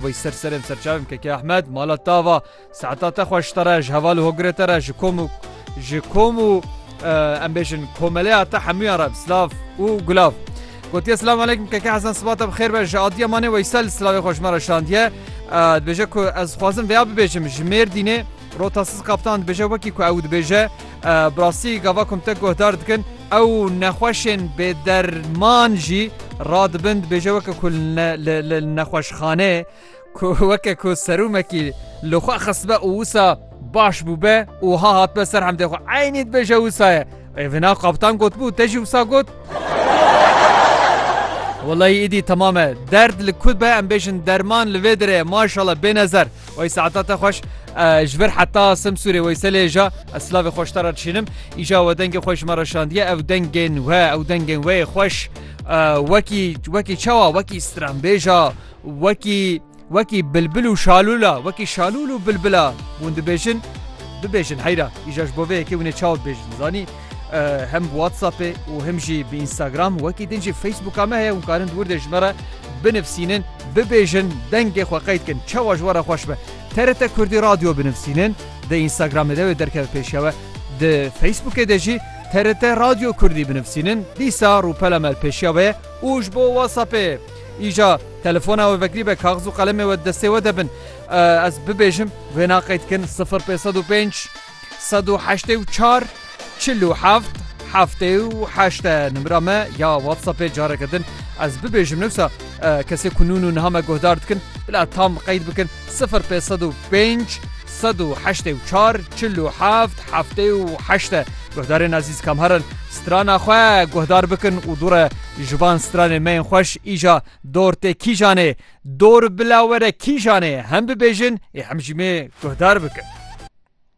Wey ser serên serçavên KK Ehmed mala tava saeta te xweş te re ji heval û hogirê te re ji kom û ji kom û em bêjin komeleya te hemûyan re silav û gulav. Gotiye Silamu Aleykum KK Hezan siba te bi xêr be ji adiya manê Weysel silavê xwe ji me re şandiye. Dibêje ku ez dixwazim vêya bibêjim ji Mêrdînê Rotasiz Kaptan dibêje wekî ku ew dibêje bi rastî gava komtek guhdar dikin ew nexweşên bêderman jî radibin dibêje weke ku li nexweşxaneyê ku weke ku serûmekî li xwe xistbe û wisa baş bûbe û ha hatbe ser hemdê xwe eynî dibêje wisa ye ê vina kaptan gotbû te jî wisa got Welayî îdî temame derd li ku be em bêjin derman li vê dirê maşala bênezer. Wey saeta te xweş ji vir heta Simsûrê Weyselê ja ez silavê xweş te re dişînim. Îja we dengê xwe ji me re şandiye ew dengên we ew dengên wê xweş wekî wekî çawa wekî stranbêja wekî wekî bilbil û şalûla wekî şalûl û bilbila hûn dibêjin bibêjin heyra îja ji bo vê yekê hûnê çaw bêjin zanî Hem bi WhatsAppê û him jî bi Instagram wekî din jî Facebooka me heye hûn karin di wir de ji me re binivîsînin, bibêjin, dengê xwe qeyd kin çawa ji we re xweş be. TRT Kurdî Radio binivîsînin, di Instagramê de wê derkeve pêşewe. Di Facebookê de jî TRT Radio Kurdî binivîsînin, dîsa rûpela me li pêşiya we ye û ji bo WhatsAppê îja telefona we vekirî be kaxiz û qelemê we di destê we de bin. Ez bibêjim wê naqeyd kin sifir pênc sed û pênc sed û heştê û çar çil û heft heftê û heşt e nimira me ya WhatsAppê careke din ez bibêjim newsa kesê ku nûn û niha me guhdar dikin bila tam qeyd bikin sifir pê sed û pênc sed û heştê û çar çil û heft heftê û heşt e guhdarên ezîz kam herin strana xwe guhdar bikin û dûre ji van stranê me yên xweş îja dor tê kîjanê dor bila were kîjanê hem bibêjin ê hem jî me guhdar bikin.